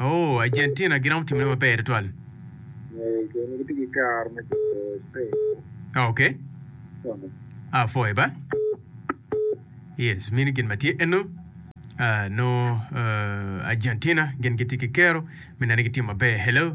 Ooh, Argentina giromo timone maber tutwal. Ok. Ah, four eba. Yes, meno gin ma tye eno. Ah, nongo ah, Argentina gin gitye ki kero me neno ni gitimo maber. Hello.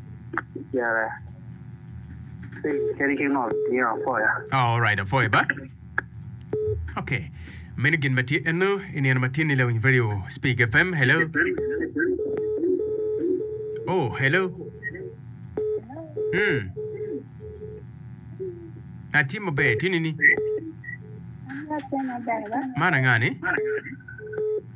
Picere kadi ki ngo nio apoya. Oh, alright, apoya ba. Okay. Meno gin ma tye eno i nino ma tinni lawiny radio Speak FM. Hello. Oh, hello. Hmm. Atye maber, tinni ni. Atye maber ba. Man angani?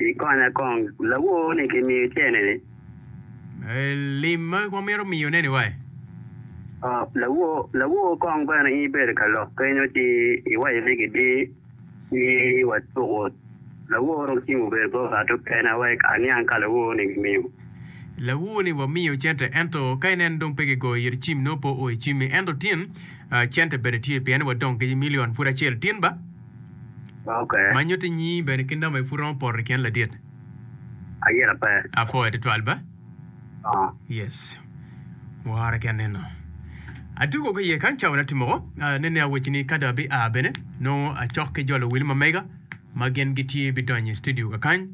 Ikonya kong, lawor ni kimiyo cene ni. Lim ma wamito miyo ne ni wa e. Lawor, lawor kong bene in ibedo ka lok kenyo ci iwaco ni gidi ni wa tuku lawor dong cim obedo bot ngat okene wek aniang ka lawor ni gimiyo. Lawor ni wamiyo cente ento ka ineno dong pe gigoyo iri cim nongo pe oo icimmi ento tin cente bene tye pien ni wadong ki milion pud acel tin ba. Ma nyutti nyingi bene ki namba-ni pud romo poto i kin ladit. Ayera pe. Apwoyo twatwal ba. Oo. Yes. Wora ki aneno. Atugo ki iye kany cawa natim woko. Ah, nene awecci ni ka dong abi a bene, nongo acok ki jo luwil ma mega ma gin gitye bidonyo i studio kakany.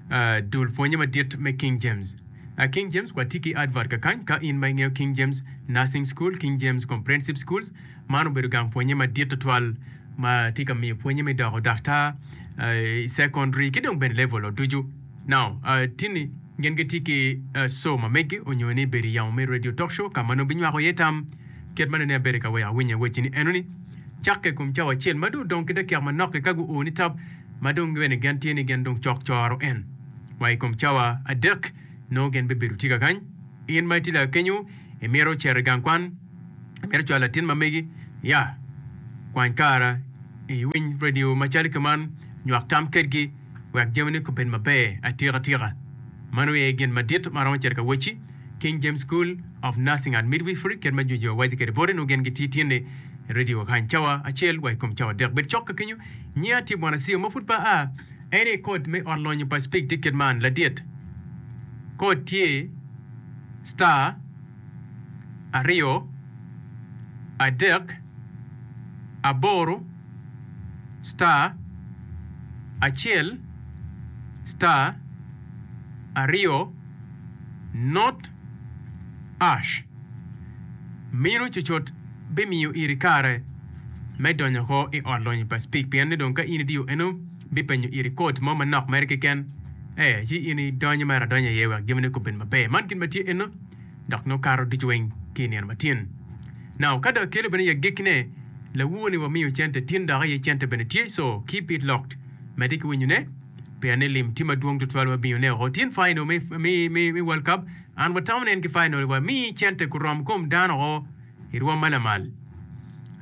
Ah, dul pwonye madit me King James. Ah, King James, watye ki advert kakany ka in ma ingeyo King James Nursing School, King James Comprehensive Schools, Man obedo gang pwonye madit tutwal ma tye ka miyo pwonye me doko daktar i sekondari ki dong bene level-o ducu. Now, tini gin gitye ki show ma megi onyo ni bedo i yamo me radio talk show ka ma nongo binywako iye tam. Kit ma nene abedo ka weko awinya iwacci ni enoni, Cakke i kom cawa acel ma dong odong ki dakiaka manok-ki ka guo ni tap ma dong bene gen tye ni gen dong cok coro en, wa i kom cawa adek nongo gen bibedo tika kany. In ma itye laa kenyo, imito cito i gang kwan? Mito cwalo latin ma megi ya. Kwany kara i winy radio ma calo ki man, nywak tam kedgi wek jamini kubed maber atika tika. Mano aye gin madit ma aromo cito ka wocci. King James School of Nursing and Midwifery kit ma Jojua waco kede boti nongo gin gitye tyene radio kany cawa acel wa i kom cawa dek. Bed cok ka kenyo. Nyinga tye Bwanacia ma pud pe aa. En aye kod me ot lonyo pa Spig tye kit man, ladit. Kod tye Star. aryo, adek, aboro, star, acel, star, aryo, not, ash. Mino cucut bimiyo iri kare me donyo oko i Ot Lonyo pa Speke pien ni dong ka in idiyo eno, bipenyo iri kod mo manok mere keken, ee, ci in idonyo mere adonya iye wek jamine kobed maber. Man gin ma tye eno. dok nongo kato ducu weng ki i nino matin. Now ka dong kelo bene i agekkine, lawu ni wamiyo cente tin dok aye cente bene tye so ki bit locked medde ki winyone peya ni lim tye madwong tutwal wa biyo ne oko tin final me me me world cup an watamo nen ki final wa mi cente gurom kom dano oo. i rwom ma lamal.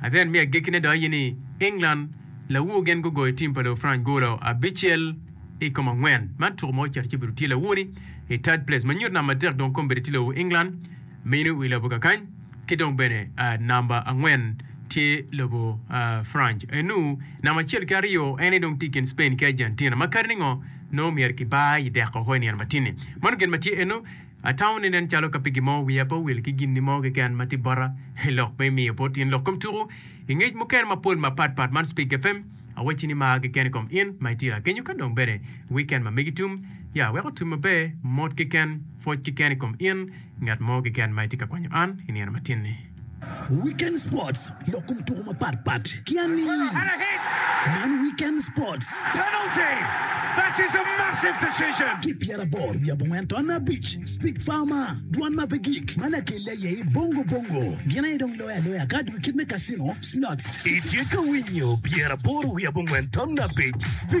Adhen me agekkine dok aye ni England lawu gin gugoyo tim pa Lufrance golo abicel i kom angwen. Man tuku ma ocito ci bedo tye lawu ni i third place ma nyuto namba adek dong kong bedo tye lobo England meno i lobo kakany ki dong bene namba angwen tye lobo France enu namba acel ki aryo ene dong tye i kin Spain ki Argentina ma kadi ni ngo nongo myero kibar i deko oko i nino matini. Mano gin ma tye enu. Atamo ni nen calo ka pi gin mo wiya pe owil ki gin mo keken ma tye bota i lok me miyo bot in lok kom tuku i ngec mukene mapol mapat pat man Speak FM awacci ni mar keken i kom in ma itira kenyo ka dong bene weekend ma megi tum ya wek otum maber mot keken pwoc keken i kom in ngat mo keken ma itye ka kwanyo an i nino matin ni. Weekend Sports, lok kom tuko mapat pat ki aningi. Man Weekend Sports. Ki pyera aboro wiye abongwen ton abic, Speak Farmer, dwan ma pe gik, ma lakelle aye i Bongo Bongo. Gin aye dong loyo aloya ka adwogi kit me casino, slots. Itye ka winyo pyera aboro wiye abongwen ton abic, Speak.